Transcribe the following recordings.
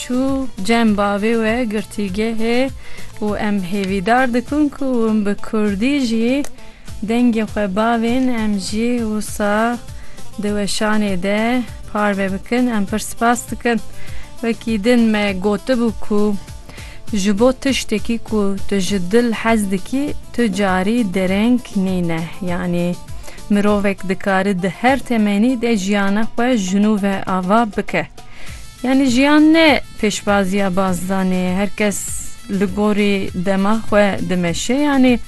Çû cem bavê we girtîgehê û em hêvîdar dikin ku hûn bi kurdî jî dengê xwe bavên em jî wisa di weşanê de parve bikin. Em pir spas dikin. Wekî din me gotibû ku ji bo tiştekî ku tu ji dil hez dikî tu carî dereng nîne. Yanî mirovek dikare di her temenî de jiyana xwe ji nû ve ava bike. Yanî jiyan ne pêşbaziya bazdanê ye. Her kes li gorî dema xwe dimeşe. Yanî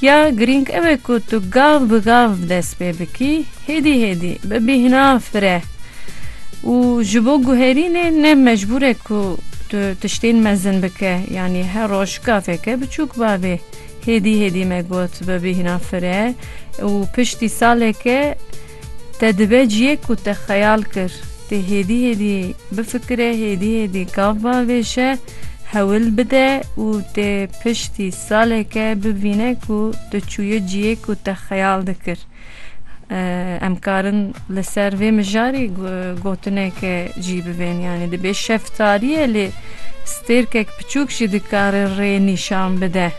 ya girîng ew e ku tu gav bi gav dest pê bikî, hêdî hêdî bi bîhna fire û ji bo guherînê ne mecbûr e ku tu tiştên mezin bike. Yanî her roj gaveke biçûk bavê. Hêdî hêdî me got bi bîhna fire û piştî saleke Te dibe ciyê ku te xeyal kir, tê hêdî hêdî bifikire, hêdî hêdî gav bavêje, hewil bide û tê piştî saleke bivîne ku tu çûye ciyê ku te xeyal dikir. Em karin li ser vê mijarî gotineke jî bibên yanî dibê şeftaliye lê stêrkek piçûk jî dikare rê nîşan bide.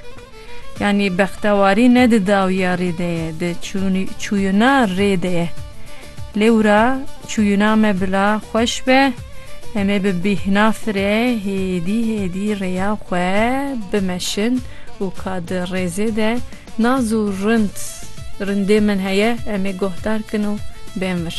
Yanî bextewarî ne di dawiya rê de ye, di çûyina rê de ye. Lêwra çûyina me bila xweş be, em ê bi bîhna firê hêdî hêdî rêya xwe bimeşin û ka di rêzê de naz û rind rindê min heye em ê guhdar kin û bên vir.